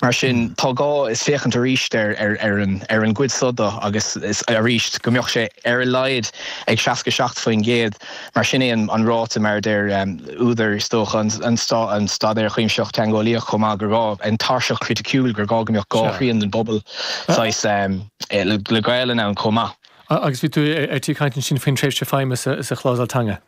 Mar sin, tá gá le féachaint arís ar an gcuid so dó agus arís go mbeadh sé ar a laghad ag 67%, mar sin é an ráta, mar a deir údair, is dócha, an Staidéir Chuimsithigh Teangeolaíoch chomh maith, gur gá an tairseach chriticiúil, gur gá go mbeadh dhá thrian den bpobal saghas le Gaolainn ann chomh maith. Agus bhí tú ar tí caint ansin faoin tréimhse feidhme sa chlásail teanga.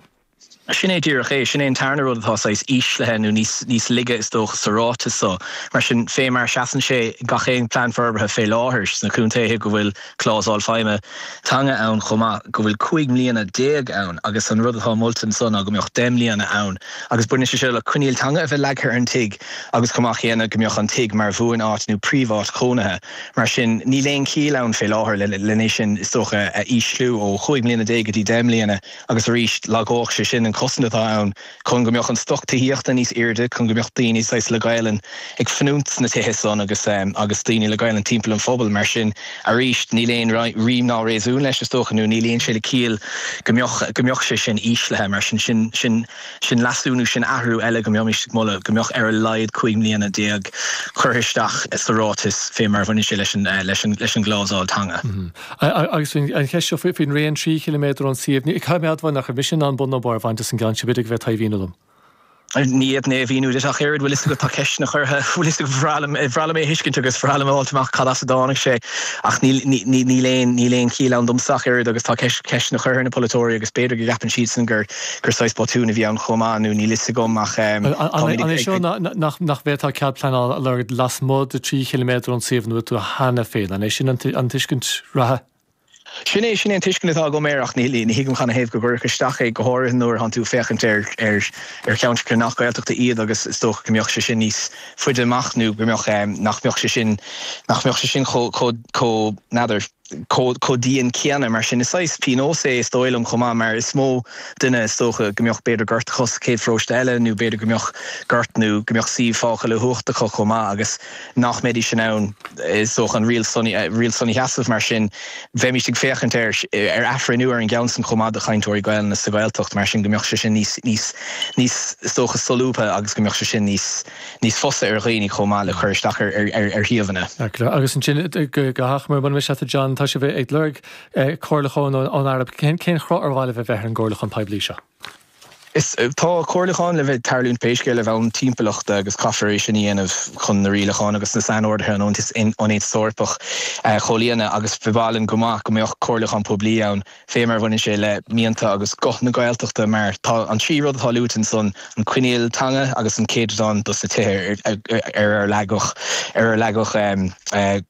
Sin é díreach é. Sin é an tarna rud atá saghas íslithe nó níos laige is dócha sa ráiteas so. Mar sin, fé mar a seasann sé i gach aon Plean Forbartha fé láthair sna contaetha go bhfuil clásal feidhme, teanga ann chomh maith, go bhfuil cúig mbliana déag ann agus an rud atá molta anso ná go mbeadh deich mbliana ann agus baineann sé seo le coinníoll teanga a bheith leagtha ar an tigh agus chomh maith céanna go mbeadh an tigh mar bhuan-áit nó príomh-áit chónaithe. Mar sin, níl aon chiall ann fé láthair lena sin is dócha a ísliú ó chúig mbliana déag go dtí deich mbliana. Agus arís, lagódh sé sin an cosaint atá ann chun go mbeadh an stoc tithíochta níos airde, chun go mbeadh daoine, saghas, le Gaolainn ag fanúint sna tithe san agus agus daoine le Gaolainn timpeall an phobail. Mar sin, arís, níl aon rím ná réasún leis, is dócha, nó ní luíonn sé le ciall go mbeadh go mbeadh sé sin íslithe. Mar sin, sin sin sin leasú nó sin athrú eile go mbeimíst ag moladh go mbeadh ar a laghad cúig mbliana déag curtha isteach sa ráiteas fé mar a bhaineann sé leis an leis an leis an gclásal teanga. Agus an cheist seo faoin raon trí chiliméadar ón suíomh, caithfidh mé a admháil nach raibh mise in ann bun nó barr a bhaint as an gceann sin, b'fhéidir go mbeifeá in ann a mhíniú domsa. Ní fhéadfainn é a mhíniú duit ach oiread, bhfuil 'fhios agat, tá ceisteanna curtha, bhfuil 'fhios agat, bhreá liom, bhreá liom é a thuiscint agus bhreá liom a fháilt amach cad as a dtáinig sé ach níl, níl, níl aon, níl aon chiall ann domsa ach oiread agus tá ceist, ceisteanna curtha ar na polaiteoirí agus b'fhéidir go gceapann siadsan gur, gur saghas botún a bhí ann chomh maith nó níl 'fhios agam ach táimid ag, ag, ag. An é seo nach, nach, nach mbeadh tú ábalta cead pleanála a lorg lasmuigh de trí chiliméadar ón suíomh ina bhfuil cheana féin. An é sin an tuiscint reatha? Sin é, sin é an tuiscint atá agam air ach ní thuigim cad ina thaobh go gcuirfí isteach é, go háirithe nuair a thánn tú féachaint ar cheantracha nach Gaeltachta iad agus is dócha go mbeadh sé sin níos faide amach nó go mbeadh, nach mbeadh sé sin, nach mbeadh sé sin chomh, chomh, n'fheadar, chomh, chomh dian céanna. Mar sin, is saghas pionós é is dóigh liom chomh maith mar is mó duine is dócha go mbeadh b'fhéidir gort acu sa chéad pharóiste eile nó b'fhéidir go mbeadh gort nó go mbeadh suíomh fágtha le huacht acu chomh maith agus nach mbeidís in ann, is dócha, an riail san a sheasamh. Mar sin, bheimís ag féachaint ar athbhreithniú ar an gceann san chomh maith do chainteoirí Gaelainne sa Ghaeltacht, mar sin, go mbeadh sé sin níos, is dócha, solúbtha agus go mbeadh sé sin níos fusa ar dhaoine chomh maith le cur isteach ar shuíomhanna. Agus ansin, go hachomair, munar miste leat, a John, tá sibh ag lorg comhairliúcháin ón Aire, cén chruth ar mhaith libh a bheith ar an gcomhairliúchán poiblí seo? Is tá comhairliúcháin le bheith ag tarlúint pé scéal ar bhonn timpeallachta agus caithfear é sin a dhéanamh chun na rialacháin agus na sainorduithe ón Aontas Eorpaigh a chomhlíonadh agus b'áil go maith go mbeadh comhairliúchán poiblí ann fé mar a bhaineann sé le mianta agus guth na Gaeltachta mar tá an trí rud atá luaite ansan, an coinníoll teanga agus an céatadán dos na tithe ar a leagadh ar leagadh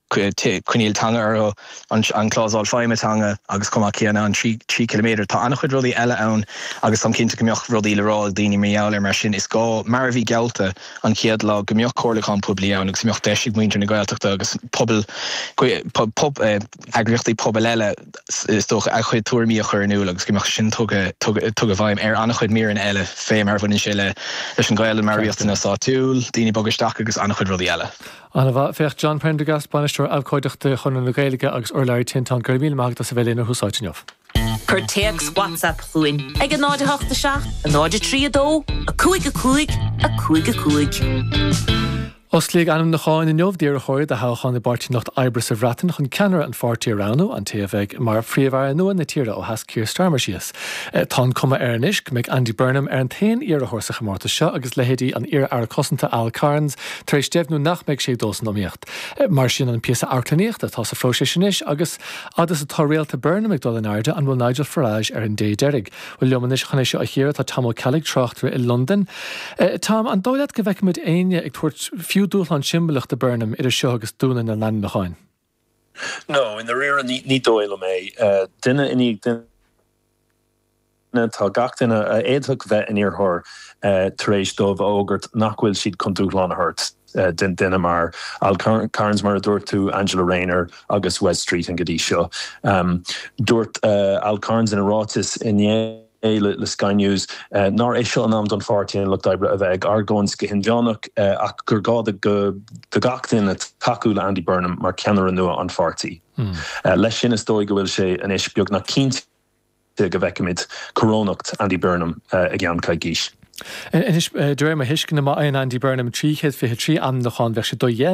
coinníoll teanga orthu. an clásal feidhme teanga agus chomh maith céanna, an trí ciliméadar. Tá an-chuid rudaí eile ann agus táim cinnte go mbeadh rudaí le rá ag daoine mar gheall air. Mar sin, is gá, mar a bhí geallta an chéad lá, go mbeadh comhairliúchán poiblí ann agus go mbeadh deis ag muintir na Gaeltachta agus pobail, eagraíochtaí pobail eile is dócha, a gcuid tuairimí a chur in iúl agus go mbeadh sin tugtha i bhfeidhm ar an-chuid míreanna eile fé mar a bhaineann sé leis an Ghaelainn, mar riachtanas áitiúil, daoine ag bogadh isteach agus an-chuid rudaí eile. An-mhaith. Féach, John Prendergast, Bainisteoir Abhcóideachta Chonradh na Gaeilge agus urlabhraí Tinteán, go raibh míle maith agat as a bheith linn ar Thús Áite inniu. Cuir téacs WhatsApp chugainn ag 08 7 0 3 2 5 5 5 5. Osclaíodh ainmniúcháin inniu d'iarrthóirí do thoghchán i bPáirtí an Lucht Oibre sa Bhreatain chun ceannaire an pháirtí a roghnú, an té a bheidh mar Phríomh-Aire nua na tíre ó sheas Keir Starmer síos. Tá an cuma air anois go mbeidh Andy Burnham ar an t-aon iarrthóir sa chomórtas seo agus leithéidí an iar-Aire Cosanta Al Carns, tar éis deimhniú nach mbeidh sé ag dul san iomaíocht. Mar sin, an píosa amharclannaíochta atá sa phróiseas anois agus fhad is atá réalta Burnham ag dul in airde, an bhfuil Nigel Farage ar an dé deiridh? Bhuel, liom anois chun é seo a chíoradh tá Tom Ó Ceallaigh, tráchtaire i Londain. Tom, an dóigh leat go bhfeicfidh muid éinne ag tabhairt fiú dúshlán siombalach do Burnham idir seo agus dúnadh na n-ainmniúchán? No, i ndáiríre ní, ní dóigh liom é. Duine i ndiaidh duine tá gach duine a d'fhéadfadh a bheith ina iarrthóir tar éis dóibh a fhógairt nach bhfuil siad chun dúshlán a thabhairt don duine mar Al Carns, mar a dúirt tú, Angela Rayner agus Wes Streeting go dtí seo. Dúirt Al Carns ina ráiteas inné. é le Sky News nár é seo an am don Pháirtí an Lucht Oibre, a bheith ag argóint go hinmheánach ach gur gá do gach duine tacú le Andy Burnham mar cheannaire nua an pháirtí. Leis sin, is dóigh go bhfuil sé anois beagnach cinnte go bhfeicfimid corónacht Andy Burnham i gceann coicís. Anois, de réir mo thuisceana, má fhaigheann Andy Burnham 323 ainmniúchán, bheadh sé dodhéanta.